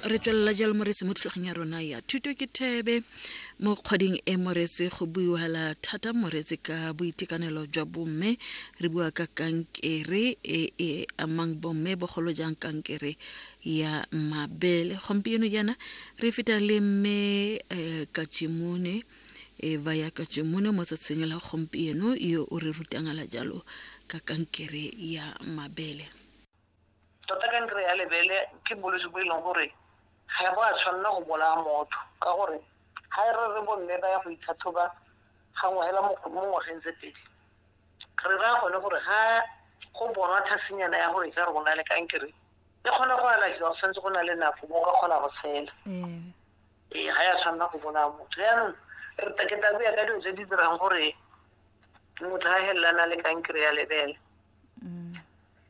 re tswelela jalo moretsi mo thulagong ya rona ya thuto ke thebe mo kgweding e moretsi go buiwala thata moretsi ka boitekanelo jwa bomme re bua ka kankere e e amang bomme bogolo jang kankere ya mabele gompieno jaana re feta le mme um katsimone e ba ya katsimone mo tsatsing la gompieno yo o re rutangala jalo ka kankere ya mabele tota kankere ya lebele ke bolwetse bo e leng gore ga e bo a tshwanela go bolaya motho ka gore ga e re re bomme ba ya go itlhatlhoba gangwe hela mo ngwageng tse pedi re raya gone gore ga go bonwa thasenyana ya gore ka re go na le kankere e kgona go alafiwa go santse go na le nako mo ka kgona go tshela ee ga ya tshwanela go bolaya motho jaanong re ke tla buya ka dilo tse di dirang gore motho a helelana le kankere ya lebele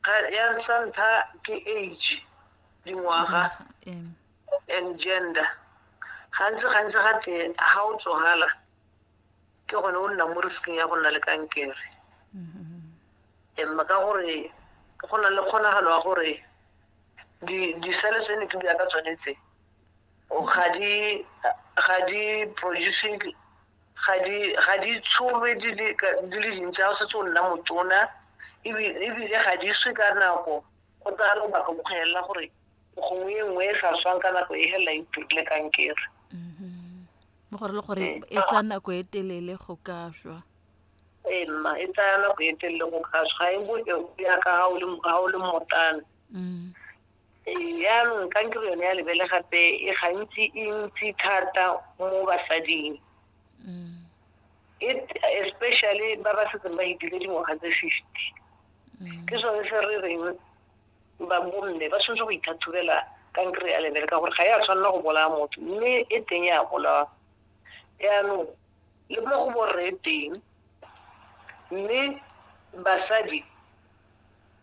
Ga- ya sa ntlha ke age dingwaga Ee. and gender gantsi gantsi ga te ga o tsogala ke gone o nna mo risking ya go nna le kankere emma ka gore go na le kgonagalo ya gore di- disele tse ne ke bua ka tsone tse ga di ga di produce ga di ga di tsholwe di le ka- di le dintsi ga o setse o nna motona ebi- ebile ga di swe ka nako go tsaya lobaka go kgwelela gore gongwe e nngwe e sa swang ka nako e fela e turile kankere mo gore le gore Ee. e tsa nako e telele go ka šwa ee mma e tsaya nako e telele go ka swa ga e bo e o ya ka ga o le ga o le motana Mm. Jaanong kankere yone ya lebele gape e gantsi e ntsi thata mo basading mm. especially ba ba setseng ba itile dingwaga tse fifty mm. ke sone se re reng ba bomme ba tshwanetse go ithathubela kankere ya lebele ka gore ga ya tshwanela go bolaya motho mme e teng ya bolawa jaanong le mo go borre teng mme basadi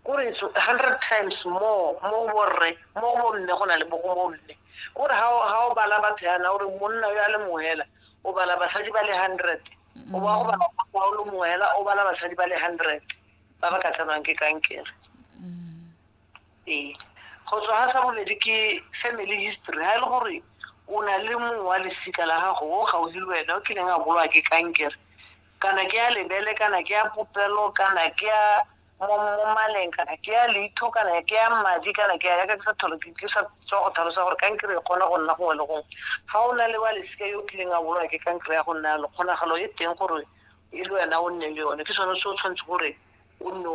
ko re it's 100 times more mo go borre mo go bomme go na le bogo mo mme ko re ga o bala batho yana gore monna yo a le mongwe hela o bala basadi ba le 100 o ba go bala wa o le mongwe hela o bala basadi ba le 100 ba ba ka tsenwang ke kankere ee go tswa ga sa bobedi ke family history ga e le gore o na le mongwe wa lesika la gago o gaufi le wena o kileng a bolwa ke kankere kana ke ya lebele kana ke ya popelo kana ke ya mo maleng kana ke ya leitho kana ke ya madi kana ke ya yaka ke sa tholo ke sa tswa go tlhalosa gore kankere e kgona go nna gongwe le gongwe ga o na le wa lesika yo o kileng a bolwa ke kankere ya go nna yalo kgonagalo e teng gore e le wena o nne le yone ke sone se o tshwanetse gore o nne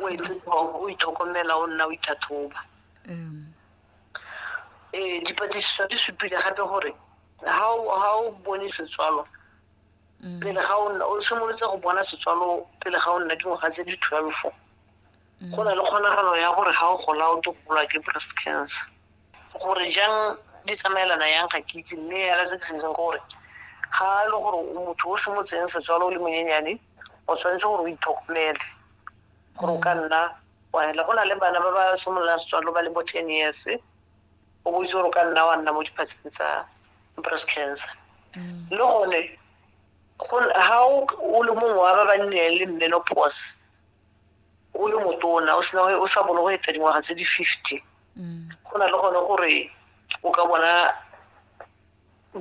o itlhokomela o nna o ithathoba um dipatlisiso di supile gape gore ga o bone setswalo mm. pele ga o simolotse go bona setswalo pele ga o nna dingwaga tse di twelve mm. go na le kgonagalo ya gore ga o gola o to golwa ke breast cancer gore jang di tsamaelana yang ga ke itse mme yala se ke se itseng gore ga e le gore motho o semotseng setswalo o le monyenyane o tshwanetse gore o itlhokomele gore o ka nna wa hela go na le bana ba ba simololang setswalo ba le bo ten years o botse gore o ka nna wa nna mo diphatseng tsa breast cancer mm. le gone ga o le mongwe wa ba ba nnileng le menopause o le motona o sena o sa bone go eta dingwaga tse di fifty mm. go na le gone gore o ka bona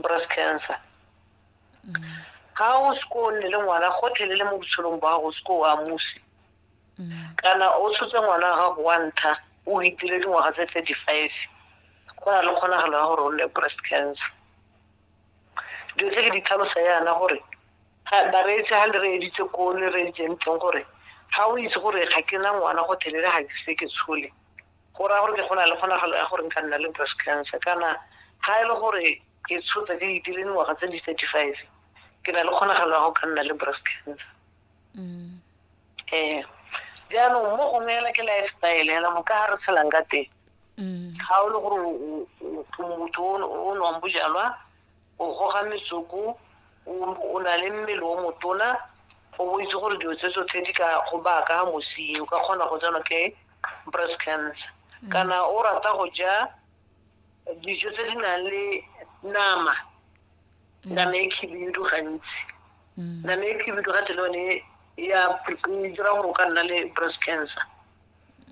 breast cancer mm. ga o se ko o nne le ngwana gotlhelele mo botshelong ba gago o se ko o amusi mm. kana o tshotse ngwana wa gago wa ntlha o itile dingwaga tse thirty five go na le kgonagalo ya gore o nne breast cancer dilo tse ke di tlhalosa yana gore bareetse ga le reeditse ko le reeditseng teng gore ga o itse gore ga ke na ngwana go thelele ga ke se ke tshole go raya gore ke go na le kgonagalo ya gore nka nna le breast cancer kana ga e le gore ke tshotsa ke itile dingwaga tse di thirty five ke na le kgonagalo ya go ka nna le breast cancer Mm. ee jaanong mo gongwe ela ke lifestyle ela mo ka ga re tshelang ka teng Mm. ga o le gore o- o- o- o motho o o nwang bojalwa o goga metsoko o o na le mmele o motona o bo itse gore dilo tse tsotlhe di ka go baka mosing o ka kgona go tsenwa ke breast cancer kana o rata go ja dijo tse di nang le nama e na le khibidu gantsi mm. na le khibidu ga tele one e ya e dira gore o ka nna le breast cancer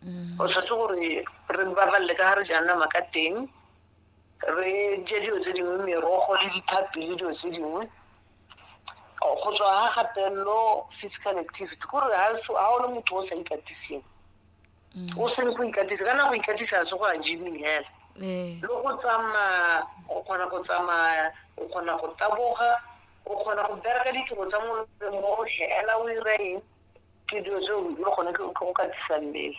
mm. o tshwanetse gore re babalele ka ga re jang nama ka teng re je dilo tse dingwe merogo le dithapi le dilo tse dingwe go tswa ga gatelelo physical activity kore ga o le motho o sa ikatiseng mm. o seng go ikatisa ka na go ikatisa se go a gyming hela eh. le go tsamaya o kgona go tsamaya o kgona go taboga o kgona go bereka ditiro tsa molemo o hela o ira eng ke dilo tseo le gone ke go katisa mmele